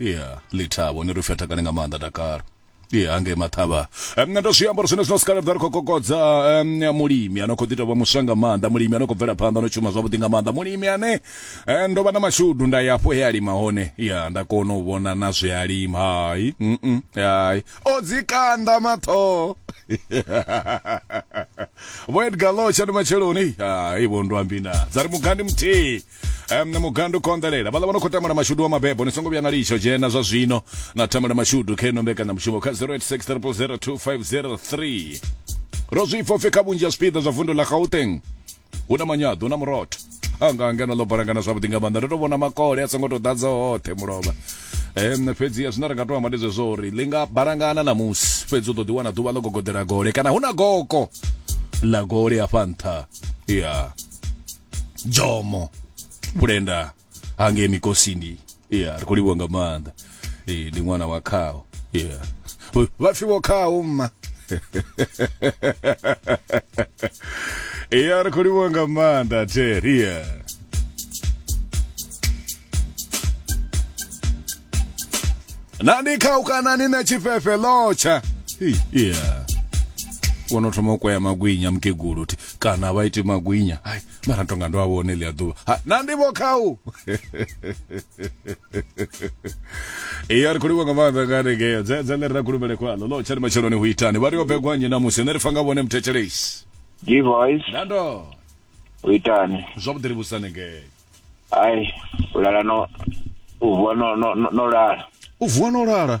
ya ḽithabo ni ri upfi a takale nga maanḓa dakalo ye hangei maṱhavha um, ndo zwiambaro zwine zwino sikala ḓa ri khou kokodza um, mulimi ano khou ḓi tovha muswa nga maanḓa mulimi ano khou bvela phanḓa no shuma zwavhuḓi nga maanḓa mulimi ane eh, ndo vha na mashudu nda ya hafho he a lima hone ya nda kona u vhona na zwe a lima hai mm -mm, hai o dzikanda maṱhoho vho edgar locha ndi matsheloni hai vho ndwambina dza ri mugandi muthihi um, na mugandu konḓelela vhaḽa vha no khou tamba na mashudu wa mabebo ni songo vhuya na litsho dzhena zwa zwino na tamba na mashudu kha ino mbekanyamushumo kha 0860002503 ro zwi pfa kha vhunzhi ha zwipiḓa zwa vundu ḽa gauteng hu na manyaḓo na murotho anga angeno ḽo balangana zwavhuḓi nga maanḓa ndo tou vhona makole a songo tou ḓadza hoṱhe mulovha um fhedzi zwine ri nga to amba ndi zwezwo uri ḽi nga balangana na musi fhedzi u ḓo ḓiwana ḓuvha ḽo gogodela gole kana hu na goko ḽa gole hafha nṱha ya yeah. jomo pulenda hangei mikosini yeah ri khou livhuwa nga maanḓa ee ndi ṅwana wa khao yeah vha pfi vho khao mma iya ri khou livhuwa nga maanḓa terry yeah na ndi khaukanani na tshifhefe lotsha Hey, yeah wono thoma u kwea magwinya mukegulu thi kana vha ite magwinya hai mara tonga ndo a vhone ḽi a ḓuvha na ndi vho khau ee a ri khou livha nga maanḓa nga hanengeo dzedze ḽe ri ra kulumele khwaḽo ḽo tshani matsheloni hu itani vha ri yo begwa nnyi namusi ne ri fa nga vhone muthethelesi divoice nando hu itani zwavhuḓi ri vhusa hanengeo ai u lala no u vuwa no no no lala u vuwa no lala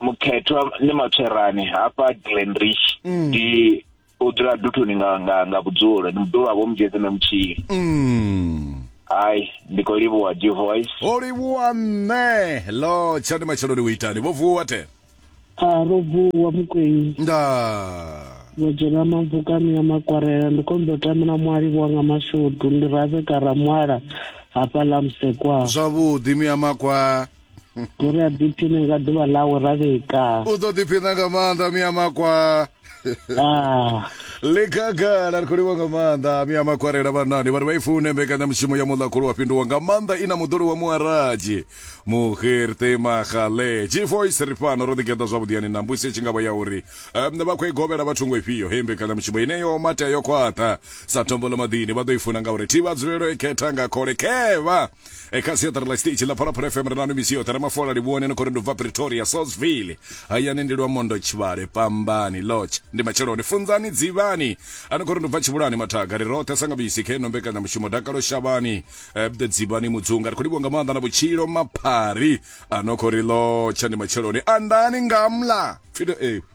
mukhethwa ni matswerani hafha glenrich mm. ndi o dzula duthoni nga nga nga vhudzulo ndi muḓulu wa vho mujeze na mutshili mm. hai ndi khou livhuwa g voice o livhuwa nṋe lo tsha ndi matsheloni u itani vho vuwa te a ro vuwa mukwenyi nda vho dzhena mabvukani ya makwarela ndi khou mbo tamela mualivhuwa nga mashudu ndi rabe karamwala hafha ḽa musekwa zwavhuḓi miyamakwa Uri a ḓiphine nga ḓuvha ḽawe ra vhika. U ḓo ḓiphina nga maanḓa mia makwa. Ah. Ḽikhagala ri khou livha nga maanḓa mia makwarela vhanani vhari vha i fune mbekanyamushumo ya muḽa khulu wa fhinduwa nga maanḓa i na muḓolo wa muaradzi muhirte magale gvoice ri fhano ro ḓigeḓa zwavhuḓi yani na mbusi tshi ngavha ya uri um, vha khou i govhela vha thungo ifhio hei mbekanyamushumo ine yo matea yo khwaṱha sa thombo ḽa maḓini vha ḓo i funa ngauri thi vha dzulelo i khetha nga khole khevha e kha siaṱari ḽa stage ḽa phalaphala fm ri na no misiyo ṱara mafola livhuone no khori ndi bva pretoria sosville hayani ndi lwamondo tshivhale pambani lodge ndi matsheloni funzani dzivhani a no khori ndi bva tshivhulani mathaga ri roṱhe sanga bisi khe no mbekanyamushumo dakalo shavhani eh, dzivhani mudzunga ri khou livhuwa nga maanḓa na vhutshilo maphari a no khori lodge ndi matsheloni andani ngamla pfido eh,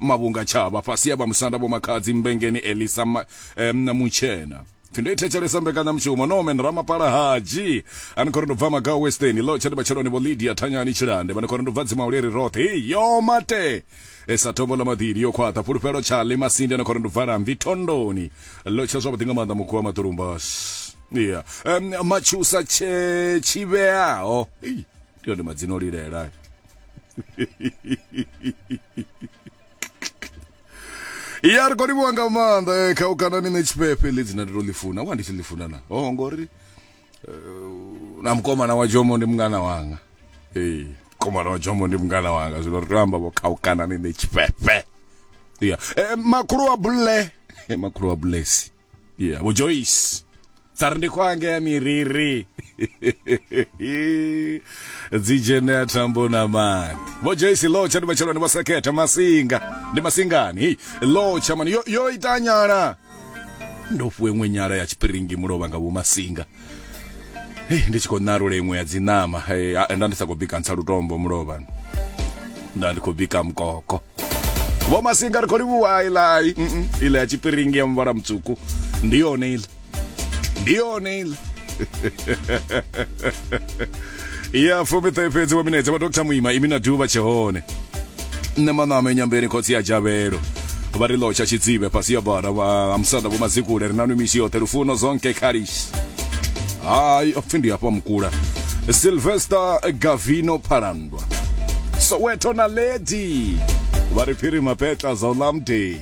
mavhunga tshavha fhasi ya vha musanda vho makhadzi mbengeni elisa ma, eh, mutshena pfi ndo i thetshelesa mbekanyamushumo no men ramapala haji ani khori ndo bva maga western lo tshati matsheloni vho lydia thanyani tshilande vhane khori ndo bva dzima uleri roṱhe hey, yo mate esa tombo ḽa maḓili yo khwaṱha fhulufhelo tshaḽi masinde na khori ndo bva lamvi thondoni lo tsha zwavhuḓi nga maanḓa mukhu wa maṱurumba yeah. um, matshusa tshe tshivheaho hey. ndi one madzina o lilela ya ri khou livhuwa nga maanḓa eh, kha u kana ni nṋe tshifhefe ḽi dzina ndi to ḽi funa wa ndi tshi ḽi funa na oh ngori eh, na mukomana wa jomo ndi mungana wanga ee mukomana wa jomo ndi mungana wanga zwino ri tea u amba vho kha u kana ni nṋe tshifhefe ya Eh, makhulu wa bulle Eh, makhulu wa bulesi yeah vho joyce tsari ndi khwange ya miriri dzi dzhenea thambo na mani vho joyce lotsha ndi matsheloni vho sekhetha masinga ndi masingani hei lotsha mani yo, yo ita nyala ndo fue ṅwe nyala ya tshipiringi mulovha nga vho masinga hei ndi tshi khou ṋarula iṅwe ya dziṋama nda ndi sa khou bika ntsha lutombo mulovha nda ndi khou bika mukoko vho masinga ri khou livhuwa ilai ila ya tshipiringi ya muvhala mutswuku ndi yone ila ndi yone ila ya fumiṱahe fhedzi wa minetse vha dr muima imi na duvha tshe hone nṋe maṋama enyambeni khotsi ya dzhavhelo vha ri lotsha tshidzive fhasi ya bara ha musanda vho mazikule ri nanwi misi yoṱhe lufuno zonke khalis hayi pfhi ndi hafha mukula silvester gavino phalandwa soweto na ledi vha ri phiri mapetla za ulamdei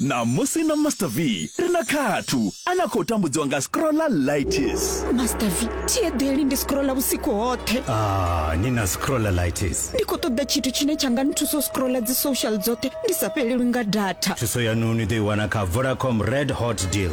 Ṋamusi na Master V ri na khathu a na khou tambudziwa nga scrollalitis. Master V, thi eḓeli ndi scrolla vhusiku hoṱhe. Ah, ni na scrollalitis. Ndi khou ṱoḓa tshithu tshine tsha nga nthusa u scrolla dzi social dzoṱhe ndi sa fhelelwi nga data. Thuso yanu ni ḓo i wana kha Vodacom Red Hot Deal.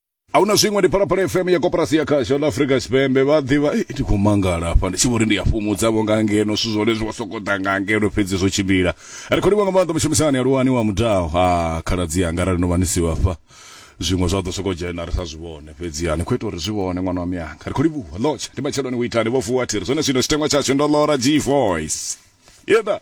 a hu na zwiṅwe ndi phalaphala fm ya koporasi ya khasho ḽa afrika tshipembe vha ḓivha "Ei, ndi khou mangala hafha ndi tshi vho ri ndi a fhumudzavho nga ngeno zwithu zwone zwi vho sokou ḓa nga ngeno fhedzi zwo tshimbila ri khou livha nga maanḓa mushumisani aluwani wa mudao ha khaladzi anga arali no vha ni si vhafha zwiṅwe zwa ḓo sokou dzhena ri sa zwi vhone fhedzi ha ni khou ita uri zwi vhone ṅwana wa miyanga ri khou livhuwa lotsha ndi matsheloni u itani vho vuwa thiri zwone zwino tshiteṅwa tshashu ndo lora g voice yeda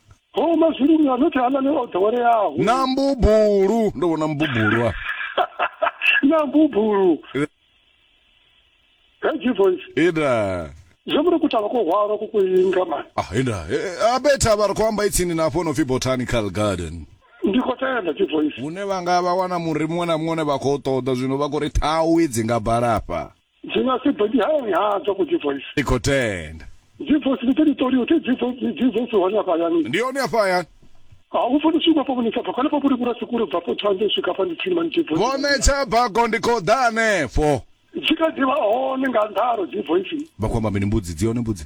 ho mazuluni a nothi halani o ḓoweleaho na mbubulu ndo vhona mbubulu a na mbubulu he jivoice ida zwo muri kutala ko hwalwa ku kuinga mani ah ida a betha vha ri khou amba itsini na hafho no pfi botanical garden ndi khou tenda jivoice hune vha nga vha wana muri muṅwe na muṅwe une vha khou ṱoḓa zwino vha khou ri thawi dzi nga balafha Ndzi nga si byi hanyantswa ku byi voice. I khou tenda. Byi voice ni teli toliwa ti byi voice ni byi voice hone hafha hayani. Ndi hone hafha hayani. A hu funi swima fo vhonisa bva khanefho vhuri vhura siku ri bva fo tshanḓe u swika hafha ndi tsini mani byi voice. Vho netsha bago ndi khou ḓa hanefho. Dzi kha ḓi vha hone nga nḓalo dzi voice. Vha khou amba mini mbudzi dzi hone mbudzi.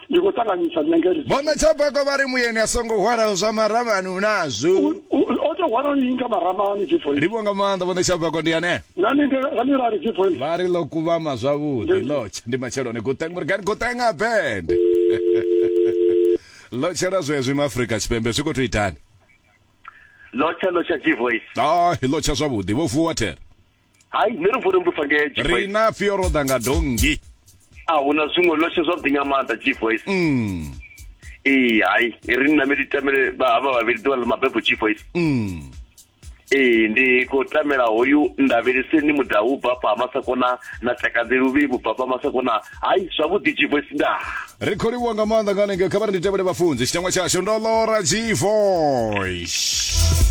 ndi khou ṱanganyisa nṋe ngeri vhomme tshabako vha ri muyeni a songo hwalaho zwa maramani hu nazwo o tou hwala ni nga maramani jifo ri vhonga maanḓa vhomme tshabako ndi ane nani ngani ra ri jifo vha ri ḽo kuvhama zwavhuḓi lotsha ndi matsheloni guteng murigani gutenga bende lotshela zwezwi ma afrika tshipembe zwi khou tou itani lotsha lotsha jivoice ah lotsha zwavhuḓi vho vuwa thera hai nṋe ri vhone mbusa ngee ri na fio ro ḓa nga dongi a hu na zwiṅwe loshe zwavhuḓi nga maanḓa chief voice mm. ee hai ri nna meli tamele havha vhavhili ḓuvha ḽa mabebo chief voice mm. ee ndi khou tamela hoyu ndavheliseni mudau u bva fha masakona na takadzi luvhi vhu bva fha masakona hai zwavhuḓi chief voice nda ri khou livhuwa nga maanḓa nga hanengeo kha vha ri ndi tevhele vhafunzi tshitangwa tshashu ndo lora chief voice